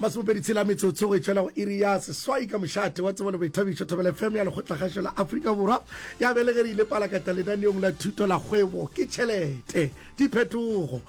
masomepedi tshela metsotso go etšwela go iri ya seswai ka mošate wa tsebo le boithabišo thobela fm ya lekgotlakgašo la aforika borwa ya belegerile palakata lenaneong la thuto la kgwebo ke tšhelete diphetogo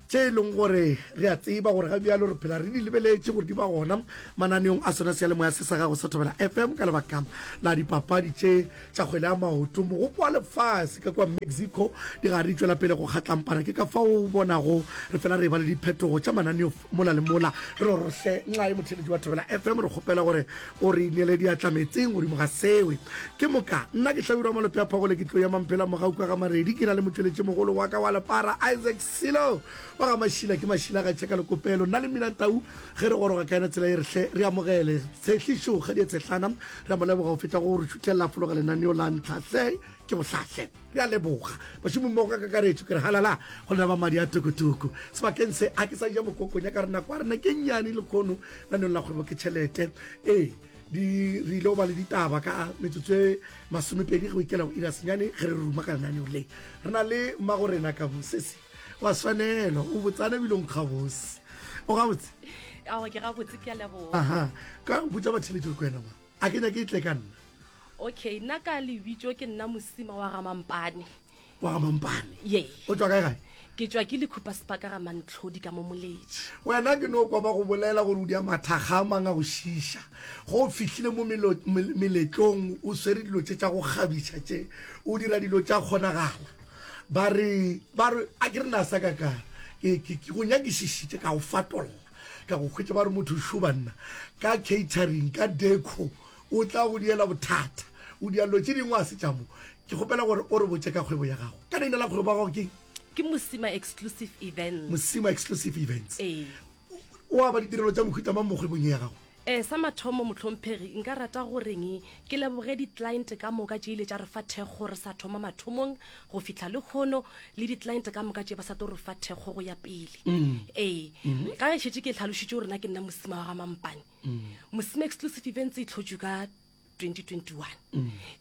tše e leng gore re a tseba gore ga bjalo re phela re di lebeletše gore di ba gona mananeong a sona se ya lemoya se sa gago sa thobela fm ka lebaka la dipapadi tše tša kgwele ya maoto mogopo wa lefase ka kwa mexico di ga re tšwela pele go kgatlampana ke ka fao o bonago re fela re ba le diphetogo tša mananeo mola le mola re rorohle nxa e motheletši wa thobela fm re kgopela gore o re ineele diatla metseng godimo ga sewe ke moka nna ke hlabirwa malope ya phagole ke tlo ya mampela mogauka ga maredi ke na le motšweletši mogolo wa ka wa lepara isaac selo wa ga mašila ke mašila ga tšheka lekopelo nna le minantau ge re goroga ka yena tsela e rehle re amogele tshehlišo kgadi ya tshehlana Re a mo leboga go feta go re šutlelela fologa lenaneo la ntlha. Se ke bohlahle. Re a leboga bašomommogo ka kakaretšo. Ke re halala go lena ba madi a tokotoko. Sebakeng se, ga ke sa ja mokokonya ka re nako ya rena ke nnyane lekhono naneong la kgwebo ke tšhelete. Ee, di re ile go ba le ditaba ka metsotso e masomepedi go ikela go ira senyane ge re ruma ka lenaneo le. Re na le Mmagorena Kabusesi wa swanelo o botsana bilong gabose o gabotse ao ke gabotse ke a leboga aha ka botsa batheletso le kwena ba a ke nyake e tle ka nna okay nna ka lebitso ke nna mosima wa gamampane wa gamampane ye o tswa kae gae ke tswa ke lekhupa sepaka ga mantlhodi ka mo moletši wena ke no kwa ba go bolela gore o di a mathaga a mang a go šiša go o fihlile mo meletlong o swere dilo tše tša go kgabiša tše o dira dilo tša kgonagala Ba re, ba re, a ke re na sa ka ka, ke, ke, ke go nyakišišitše, ka go fatolla, ka go hwetša ba re motho šo banna, ka catering, ka deco, o tla go diela bothata, o dia lo tše dingwe a se tša mo. Ke kgopela gore o re botše ka kgwebo ya gago. Ka leina la kgwebo ya gago ke eng? Ke Mosima Exclusive Events. Mosima Exclusive Events. Ee. O aba ditirelo tša mohuta mang mo kgwebong ye ya gago? E, sa mathomo, mohlomphegi, nka rata goreng ke leboge di-client ka moka tše ile tša re fa thekgo re sa thoma mathomong go fihla le kgono le di-client ka moka tše ba sa tlo re fa thekgo go ya pele. Ee, ka ge šetše ke hlalošitše gore na ke nna mosima wa ga Mampane. Mosima Exclusive Events e tlhotšwe ka 2021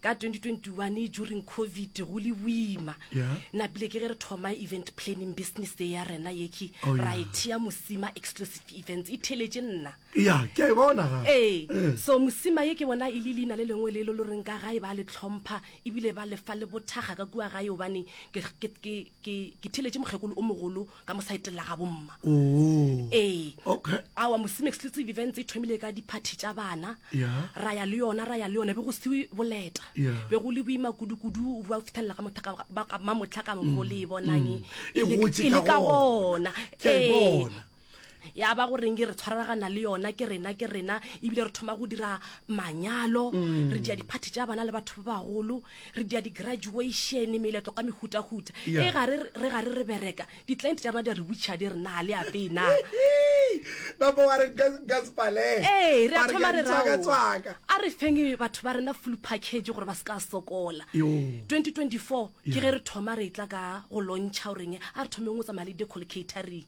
ka 2021 during covid go le boima Yeah. napile ke ge re thoma event planning business e ya rena yeki Oh, ra yeah. e thea mosima exclusive events e theletše nna ya ke a e bona ga ee Eh. so mosima ye ke bona e le leina le lengwe le lo lo reng ka gae ba le tlhompha ebile ba lefa le bothaga ka kua gae obane ke- ke- ke ke- ke theletše mokgekolo o mogolo ka mo saeteng la ga bomma oh ee okay awa mosime exclusive events e thomile ka diphathi tša bana Yeah. ra ya le yona ra ya le yona be go se boleta Yeah. be go le boima kudu-kudu ba fithelela ka motha ka- ba- ka- mamotlha ka mokgo le e bonang e. E le- gotše e le ka ka gona. gona Ke a e Ee. bona. ya ba goreng ke re tshwaragana le yona ke rena ke rena ebile re thoma go dira manyalo Mm. re dia diphathi tša bana le batho ba bagolo re dia di-graduation meletlo ka mehutahuta Yeah. e ga re re ga re re bereka di-client tša rena di a re witšha di re na le apee na napa wa re nka nka sepaleng ee re a thoma re raoa tswakatswaka a re feng batho ba rena full package gore ba se ka sokola Yo. 2024 ke ge re thoma re tla ka go lontšha goreng a re thomeng go tsamaya le decol catering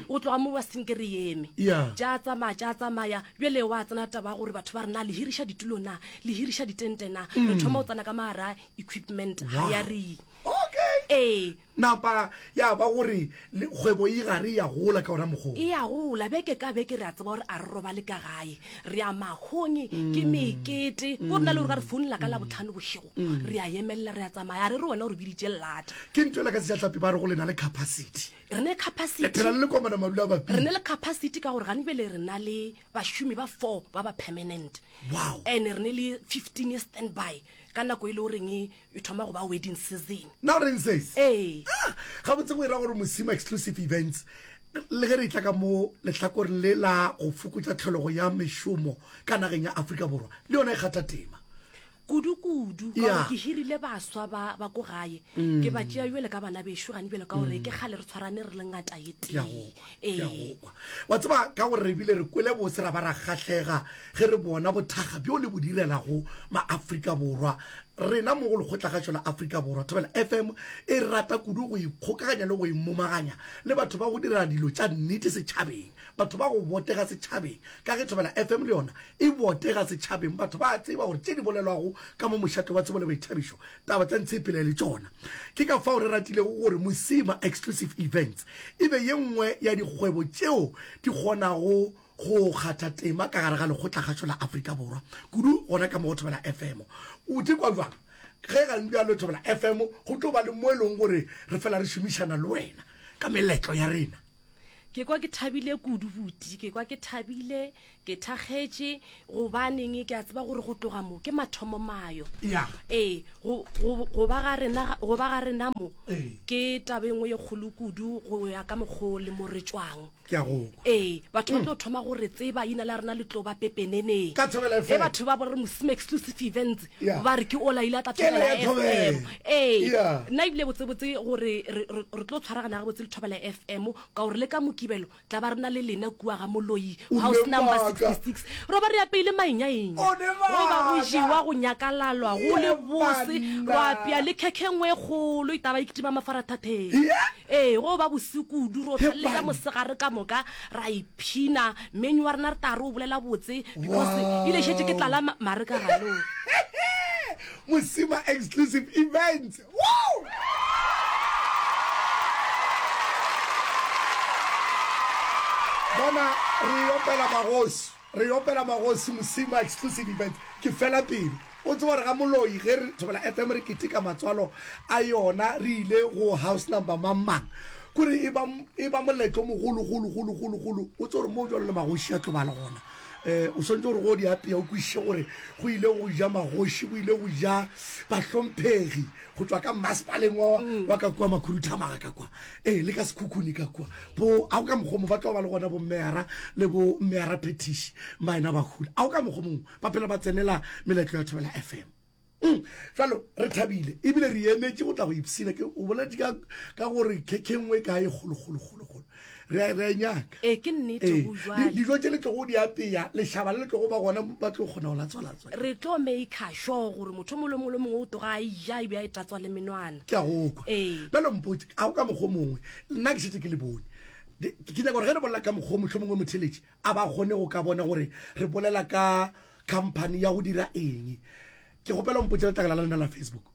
o tloga mo wa senke re eme Yeah. tša tsamaya tša tsamaya bjale wa tsena taba ya gore batho ba re na le hiriša ditulo na le hiriša ditente na re thoma o tsena ka maara equipment ga Wow. ya re okay ee napa ya ba gore le- kgwebo e gare ya gola ka ona mokgoo e ya gola beke ka beke re a tseba gore a re robale ka gae re ya makgong ke mekete go rena le gore ka re founela ka labotlhano bošego re a emelela re a tsamaya a re re wena o re biditše lata ke nto ela ka sejatlhapi ba re go lena le capacity re ne le capacity re phela le lekomana madula bapi re ne le capacity ka gore gane bele re na le bašomi ba four ba ba permanent wow and re ne le 15 ye standby ka nako e le goreng e, e thoma go ba wedding season na re ntsese ee ah, ga botse go ira gore mosimo exclusive events le ge re tla ka mo lehlakoreng le la go fokotsa tlhologo ya mešomo ka nageng ya Afrika Borwa le yona e kgatha tema kudu-kudu ka gore ke hirile baswa ba ba ko gae mm. ke ba tšea jale ka bana bešo gane jale ka gore mm. ke kgale re tshwarane re le ngata ye tee ee. wa tseba ka gore re bile re kwele bose ra ba ra kgahlega ge re bona bothaga bjo le bo direlago maaforika borwa rena mo go lekgotlagašo la aforika borwa thobela fm e rata kudu go ikgokaganya le go imomaganya le batho ba go dira dilo tša nnete setšhabeng Batho ba go botega setšhabeng, ka ge Thobela FM le yona e botega setšhabeng, batho ba a tseba gore tše di bolelwago ka mo mošate wa Tsebo le Boithabišo, taba tša Ntshepela e le tšona. Ke ka fao re ratilego gore Mosima Exclusive Events e be ye nngwe ya dikgwebo tšeo di kgonago go kgatha tema ka gare ga lekgotlakgašo la Afrika Borwa, kudu gona ka mo go Thobela FM. O tee kwa bjang? Ge ga le bjalo, Thobela FM go tlo ba le mo e lego gore re fela re šomišana le wena ka meletlo ya rena. Ke kwa ke thabile kudu buti, ke kwa ke thabile, ke thakgetše gobaneng ke a tseba gore go tloga mo ke mathomo mayo. Ya. Ee, go go go ba ga rena ga- go ba ga rena mo Ee. ke taba e nngwe ye kgolo kudu go ya ka mokgo le mo re tšwang. ke a go kwa ee batho ba tlo thoma gore tseba ina la rena le tlo ba pepeneneng Ka thobela FM. e batho ba bo re mosima exclusive events Yeah. ba re ke ola ile a tla Ke thobela le ya fm thobela. ee Yeah. nna ebile botsebotse gore re re- re tlo tshwaragana ga botse le thobela fm ka gore le ka mokibelo tla ba re na le lena kua ga moloi O house ne number maaka. 66 ro ba re apeile mainyaenya O ne go ba go maaka. jewa go nyakalalwa go le Ke bose banna. ro apea le khekhe nngwe e kgolo itaba e kitima mafarathatheng Yeah. ee go ba bosekudu ro Ke tlhalle ka banna. mosegare ka moka ra e Phina, Many wa rena re tla re o bolela botse because e le šetše ke tlala ma- mare ka galo. Mosima Exclusive Events. Woo! Bona, re opela magosi, re opela magosi Mosima Exclusive Events. Ke fela pelo. O tseba gore ga moloi ge re Thobela FM re keteka matswalo a yona re ile go house number mang mang kore e ba e ba moletlo o mogolo golo golo golo golo o tse gore mo jalo le magoši a tlo ba le gona eh o swantse gore go di apea o kwishe gore go ile go ja magoši go ile go ja bahlomphegi go tswa ka masepaleng wa wa ka kwa makhuruthamaga ka kwa eh le ka sekhukhuni ka kwa bo a o ka mokgomo ba tlo ba le gona bo mmeara le bo mmeara petishi maena bagolo a o ka mokgomong ba phela ba tsenela meletlo ya thobela fm mm, jalo re thabile ebile re emetše go tla go ipsina ke o boletse ka gore khekhengwe ka e kgolokgolokgolokgolo re a e nyaka ee ke nnete ee, go jwale dijo tse le tlogo di apeya lešaba le le tlogo ba gona ba tlo kgona go latswalatswa re tlo maker sure gore motho mole mole mongwe o toga a ija e be a e tatswa le menwana ke a go kwa ee bjalo mpotse a go ka mokgwa mongwe nna ke setse ke le bone ke nyaka gore ge re bolela ka mokgwa motlho mongwe motheletše a ba kgone go ka bona gore re bolela ka company ya go dira eng ke gopela mpotse letlakala la lena la facebook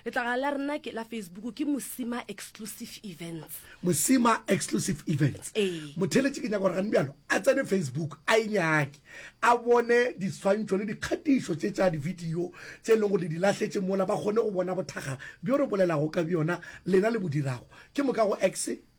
letlakala la rena ke la facebook ke mosima exclusive events mosima exclusive events ee motheletše ke nyaka gore gane bjalo a tsene facebook a e nyake a bone diswantšho le dikgatišo tše tša divideo tse e leng gore le di lahletše mola ba kgone go bona bothaga bjo re bolelago ka bjona lena le bo dirago ke moka go x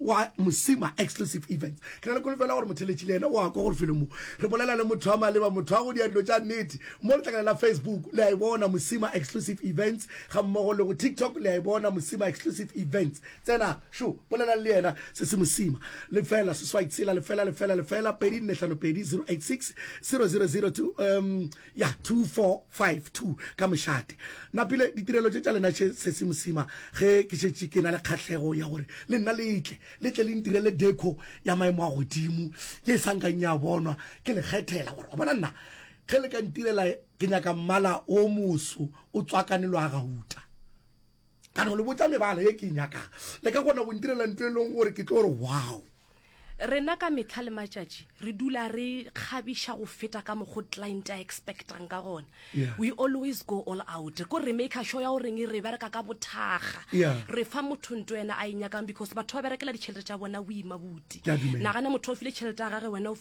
wa mosima exclusive events ke na le kolofela gore motheletši le ena o a kwa gore felong mo re bolela le motho wa maleba motho wa go dia dilo tša nnete mo letlakana la facebook le a e bona mosima exclusive events ga mmogo le go tiktok le a e bona mosima exclusive events tsena šo bolela le yena se se mosima lefela seswai tshela lefela lefela lefela pedi nne hlano pedi 086 000 um ya 2452 ka mošate napile ditirelo tše tša lena tše sesi mosima ge ke šetše ke na le kgahlego ya gore le nna letle letle le ntirele deco ya maemo a godimo ye e sankang ya bonwa ke lekgethela gore wa bona nna ge le ka ntirela ke nyaka mmala o moso o tswakane lo a gauta ka no le botsa mebala ye ke e nyakago le ka kgona go ntirela nto e leng gore ke tlo re wow rena ka metlha le matšatši re dula re kgabiša go feta ka mokgo client a expectang ka gona yeah. we always go all out ko re maker sure ya go reng re bereka ka bothaga yeah. re fa motho nto ena a e nyakang because batho ba berekela ditšhelete tša bona boima boti nagana motho o file tšhelete ya gage wena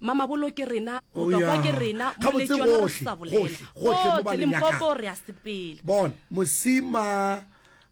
mamabolo ke rena Oh, motokwa yeah. ke rena Gabotse moletšona re gohle, sa gohle, bolela gohle mo ba Gohle, le nyakang. limpopo re a sepela bon mosima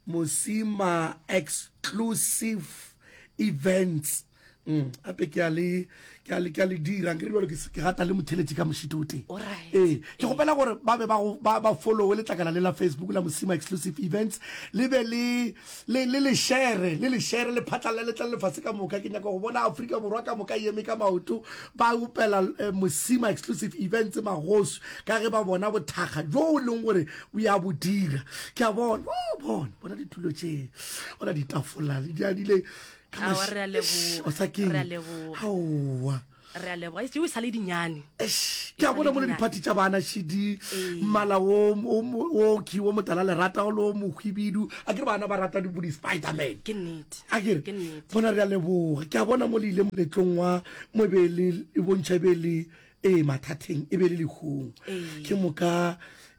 mosima exclusive events mm ape ke a le ke a le ke a le dirang ke re jalo ke se- ke rata le motheletše ka mošito o teng Alright. ee ke gopela gore ba be ba go- ba ba followe letlakala le la facebook la mosima exclusive events le be le le le le shere le le shere le phatla le letla lefase ka moka ke nyaka go bona Afrika borwa ka moka yeme ka maoto ba upela eh, mosima exclusive events magosu ka ge ba bona bothakga jo o leng gore o ya bo dira ke a bona oh, bona bona ditulo tše bona ditafola le diadile ka Aowa, re a leboga. o sa keng Re a leboga. aowa re a leboga eo e sa le dinyane ke a bona mo le diphathi tša bana shidi ee. mmala oki o motala lerata o le o mohwibidu a ke re bana ba rata bo di-spiderman ke nnete a kere bona re a leboga ke a bona mo le ile moletlong wa mo e be le e bontšha e be le ee mathateng e be le lehung ee. ke moka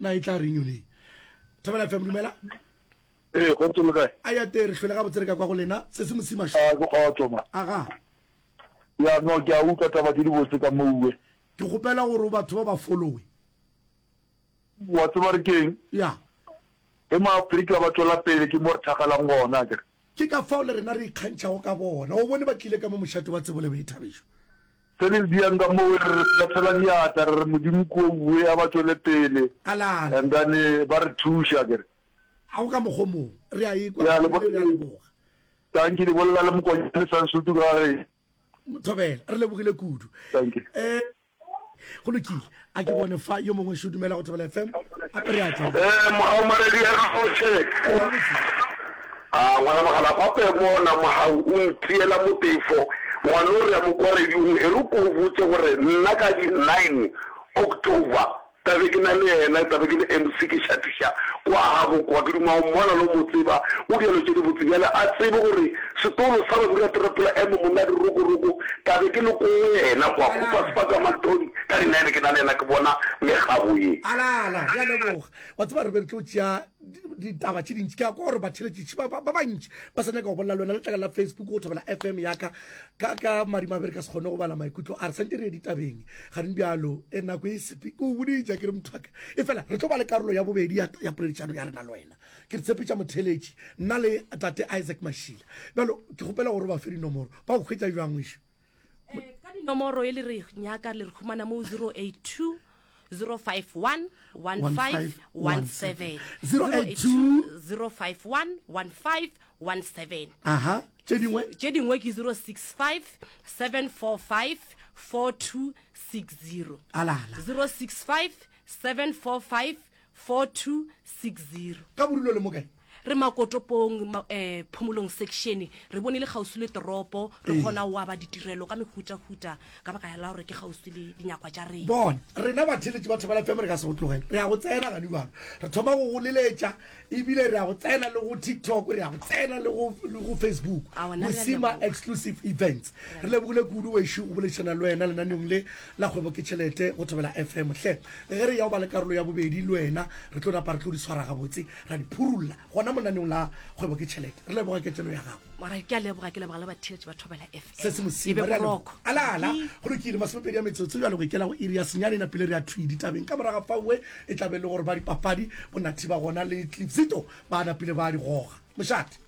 na e tla reng yone thobela fm dumela ee go ntse le kae a ya tee re hlwele ga botse re ka kwa go lena se se mosimašo a ke kgotso ma aga ya no ke a utlwa taba tse di botse ka mouwe ke kgopela gore batho ba ba followe wa tseba re keng ya Ge Maafrika ba tšwela pele, ke mo re thakgalang gona, akere? Ke ka fao le rena re ikgantšhago ka bona. O bone ba tlile ka mo mošate wa tsebo le boithabišo. Ge re le diang ka moo, re bethela diatla, re re, Modimo kua o bue, a ba tšwele pele, and then ba re thuše, akere? A go ka mokgwa o mongwe? Re a e-kwa e bile re a leboga. Tang ke le bolela le Mokonyane Sansutu ka ga ge. Thobela. Re lebogile kudu. Thank you. Go lokile, a ke bone fa yo mongwe šo dumela go Thobela FM a pere a tšwa. Ee, mogau maredi a kgoše. A ngwana mogala pape bona mogau o ntiela motefo ngwanore ya mo kwa radiong e re ko o botse gore nna ka di nine October Tla be ke na le yena, tla be ke le MC, ke šathiša kwa gabo kwa. Ke duma o mmona le go mo tseba, o diyalo tše dibotse bjale. A tsebe gore setolo sa Babirapherapela M. Monadi Rokoroko, tla be ke le ko go yena kwa, Coopers Park ka Manthodi, ka di nine, ke na le yena, ke bona megabo ye. Ala, ala, re a leboga. Wa tseba, re be re tlo tšea ditaba tše dintši. Ke a kwa gore batheeletši ba bantši ba sa nyaka go bolela le wena. Letlakala la Facebook, go Thobela FM ya ka, ka, ka madimabe re ka se kgone go bala maikutlo a re. Sa ntše re ye ditabeng. Gane bjalo, e nako e sepe. Ke o boditša, ke re, mothwaka, efela re tlo ba le karolo ya bobedi ya, ya poledišano ya rena le wena. Ke re tshepetša motheeletši, nna le Tate Isaac Mashila. Bjalo, ke kgopela gore o ba fe dinomoro. Ba go hwetša bjang, ngwešu? Eh, ka dinomoro e le re nyaka le re humana mo 082 051 1517 082 051 15 07. Aha, tše dingwe? Tše dingwe ke 065 745 4260. Alala. 065 745 4260. Ka bodulo le mokae? re makotopong ma, eh, phomolong section re bone le kgauswi le toropo re Ee. kgona wa ba ditirelo ka mehutahuta ka baka la gore ke kgauswi le dinyakwa tša rena bona rena batheletši ba thobela fm re ka se go tlogele re ya go tsena gane bjalo re thoma go go leletša ebile re a go tsena le go tiktok re a go tsena le go le go facebook A, wena re a mosima leboga. exclusive events re lebogile kudu wešo go boledišana le wena lenaneong le la kgwebo ke tšhelete go thobela fm hle ge re ya go ba le karolo ya bobedi le wena re tlo napa re tlo di tshwara gabotse ra di phurulla gona mo lenaneong la kgwebo ke tšhelete re leboga ketelo ya gago Alright, ke a leboga ke leboga le batheletši ba thobela fm se se mosimo re alo alala go lokile masomepedi ya metsotso jalo go ikela go iri ya senyane na pele re a thwi ditabeng ka moraga faue e tlabe le gore ba dipapadi bonathi ba gona le tlipsito ba na pele ba di goga mošate